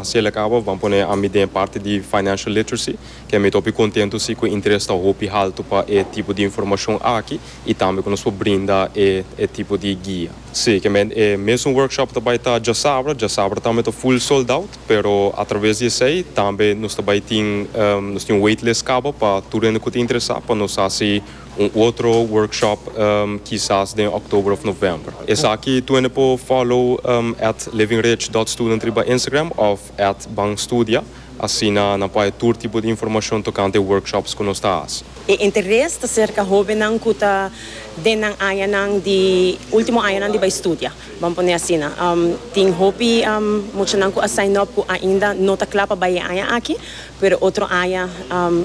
Si el a kaba bo ban pone ami den e parti di Financial Literacy ke mi ta hopi kontentu si ku e interes ta hopi haltu pa e tipo di informashon aki i tambe ku nos por brinda e e tipo di guia. Si, ke men e mesun workshop ta bai ta djasabra, djasabra tambe ta full sold out, pero atraves di esei tambe nos ta bai tin nos tin un waitlist kaba pa tur hende ku ta interesá pa nos hasi Un otro workshop kisas den oktober of november. Esaki tu hende por follow at livingridge.student riba Instagram of at banstudia, asina nan por haya tur tipo di informashon tokante e workshops ku nos ta hasi. E interes ta serka hóbennan ku ta den nan añanan di último añanan di bai studia, ban pone asina. Tin hopi muchanan ku a sign up ku ainda no ta kla pa bai e aña aki. Pero otro aña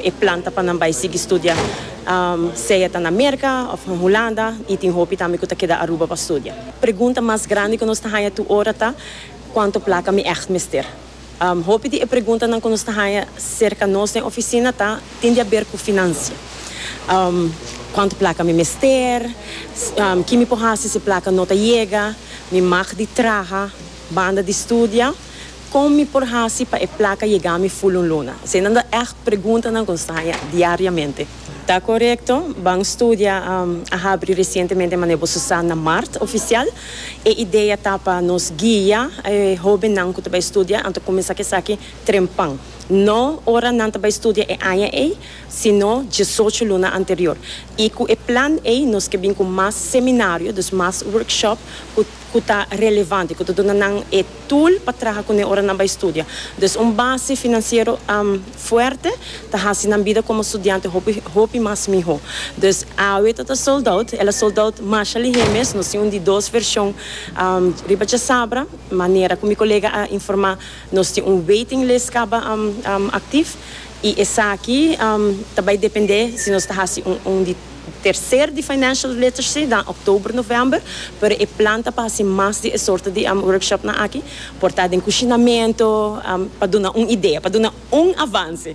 e plan ta pa nan bai sigui studia, sea ta na Merca of na Hulanda, y tin hopi tambe cu ta keda Aruba pa studia. Pregunta mas grandi cu nos ta haña tur ora ta, Cuanto placa mi echt mester? Hopi di e preguntanan cu nos ta haña cerca nos den oficina ta tin di haber cu financia. Cuanto placa mi mester? Ki mi por haci si e placa no ta yega? Mi mag di traha banda di studia? Kon mi por hasi pa e plaka yega mi ful un luna? Eseinan ta ègt preguntanan ku nos ta haña diariamente. Ta korekto, Ban Studia a habri resientemente manera bo su sa na mart ofisial. E idea ta pa nos guia e hóbennan ku ta bai studia anto kuminsá ku esaki trempan. No ora nan ta bai studia e aña ei, sino diesocho luna anterior. I ku e plan ei nos ke bin ku mas seminario, dus mas workshop ku. ku ta relevante, ku ta duna nan e tool pa traha kuné ora nan bai studia. Dus un base finansiero fuerte ta hasi nan bida komo studiante hopi hopi mas mihó. Dus awe ta ta sold out, el a sold out masha lihé mes, nos tin un di dos vershon riba djasabra, manera ku mi kolega a informá nos tin un waiting list kaba aktif i esaki ta bai dependé si nos ta hasi un di. Tercer di Financial Literacy ta October, November, pero e plan ta pa haci mas di e sorto di workshopnan aki, por ta den cushinamento, pa duna un idea, pa duna un avance.